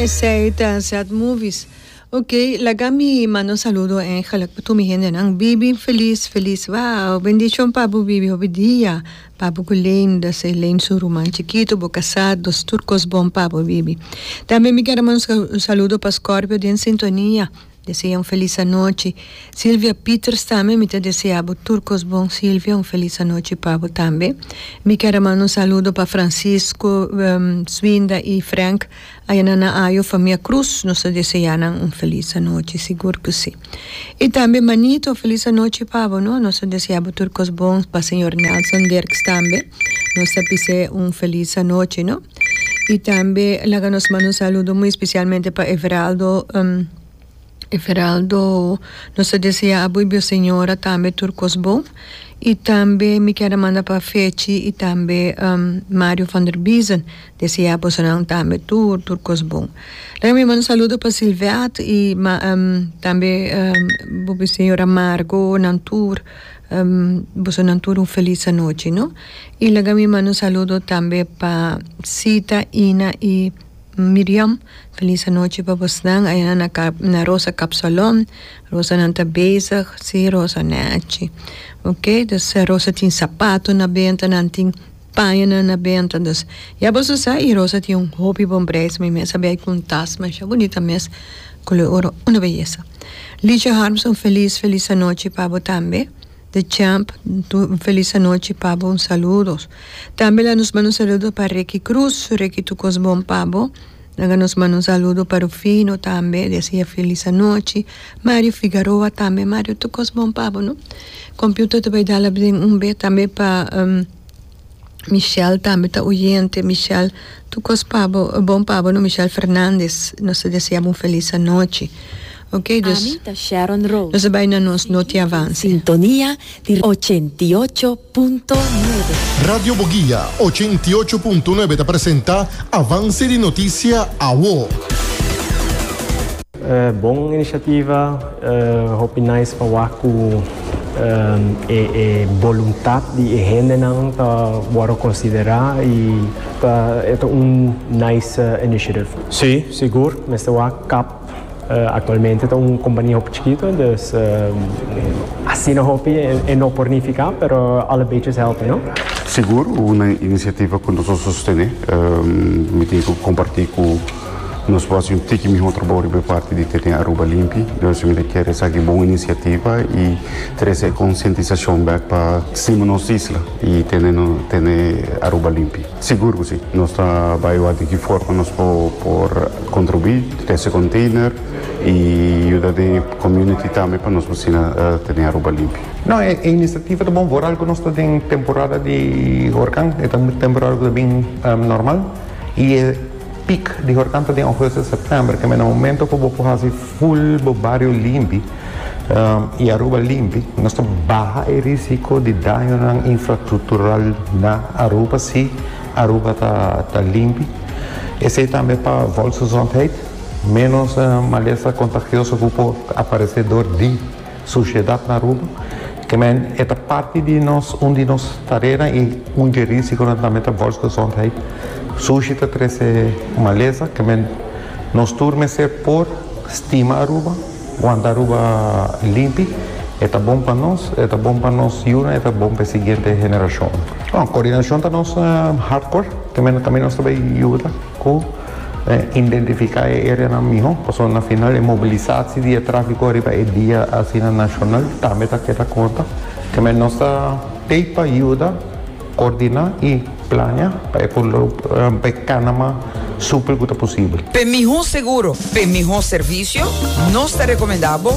Esey ta sad movies. Ok laga mi mando saludo en gelijk pa tur mi hendenan. Bibi feliz feliz wao. Bendición pa bo Bibi hopi dia pa bo cu Leen dat is Leen su ruman chikito bo casado dus tur cos bon pa bo Bibi. Tambe mi quiero mando un saludo pa Scorpio den sintonia. Desea un felis anochi Silvia Pieters tambe mi ta desea bo tur kos bon Silvia un felis anochi pa bo tambe mi kier a manda un saludo pa Francisco Swinda y Frank ayana na ayo famia Cruz nos ta desea nan un felis anochi sigur cu si y tambe Manito un felis anochi pa bo no nos ta desea bo tur kos bon pa señor Nelson Dirks tambe nos ta pis'e un felis anochi no. Y tambe laga nos manda un saludo muy especialmente pa Everaldo, Everaldo nos ta desea abo y bo señora tambe tur cos bon. Y tambe mi ker a manda pa Fechi y tambe Mario van der Biesen desea bosonan tambe tur tur cos bon. Laga mi manda un saludo pa Silvert y ma tambe bo señora Margo nan tur bosonan tur un feliz anochi no. Y laga mi manda un saludo tambe pa Sita, Ina y Miriam. Feliz anochi pa bosnan ayana na Cap na Rosa Capsalon. Rosanan ta bezig, si Rosa nechi. Ok, dus Rosa tin sapato na benta, nan tin pañonan na benta. Dus ya boso sa y Rosa tin un hopi bon prijs. Mi mes a bay cu un tas masha bunita mes, color oro, una beyesa. Ligia Harms un feliz, feliz anochi pa bo tambe. The Champ un felis anochi pa bo un saludos tambe la nos manda un saludo pa Ricky Cruz Ricky tur cos bon pa bo laga nos manda un saludo pa Rufino tambe deseae felis anochi Mario Figaroa tambe Mario tur cos bon pa bo no computer ta bay dal abden un bes tambe pa. Michelle tambe ta oyente Michelle tukos pa bo bon pa bo no Michelle Fernandez nos ta deseabo un felis anochi ok dus Ami ta Sharon Rose. nos a bai na nos noti avance. Sintonia di ochenta i ocho punto nuebe. Radio Boguia ochenta i ocho punto nuebe ta presenta Avance di Noticia, awo. Bon inisiativa, hopi nice pa wak ku e boluntat di e hendenan ta wòrdu konsiderá i ta e ta un nice initiative. Sí, sigur, mester wak kap aktualmente ta un kompania hopi chikitu, dus asina hopi e no por nifiká, pero al e beches hèlpi, no? Sigur, un inisiativa ku nos a sostené, mi tin ku kompartí ku. Nos por hasi un tiki mihó trabou riba e parti di tene Aruba limpi. Nos tambe ta kere sa ki bon inisiativa i trese e konsientisashon bèk pa stima nos isla i tene tene Aruba limpi. Sigur ku si. Nos ta bai wak di ki forma nos por kontribuí, trese konteiner i yuda den e komuniti tambe pa nos asina tene Aruba limpi. No, e inisiativa ta bon for algu. Nos ta den temporada di hurkan. E ta un temporada ku ta bin normal i e. Pic di hortanto den Augustus September kende na momento cu bo por haci full bo bario limpi y Aruba limpi nos ta baha e risico di dañonan infrastructural na Aruba si Aruba ta limpi esey tambe pa volksgezondheid menos malesa contagioso cu por aparece door di Sushiedat na Aruba, Kemen, e ta parti di nos, un di nos tarenan i un dje risi ku nan ta mete volksgezondheid. Sushi ta trese malesa, kemen, nos tur mester por stima Aruba, wanta Aruba limpi, e ta bon pa nos, e ta bon pa nos yunan, e ta bon pa e siguiente generashonnan. Kordinashon ta nos hart kor, kemen, kami nos ta bai yuda. Cu identifica e areanan miho, pasobra na final e mobilisatie di e trafico riba e dia asina nacional tambe ta keda corta. Keme nos ta pei pa yuda coordina y plania pa e por e cana mas supel cu ta posibel. P'e miho seguro, p'e miho servicio, nos ta recomenda bo.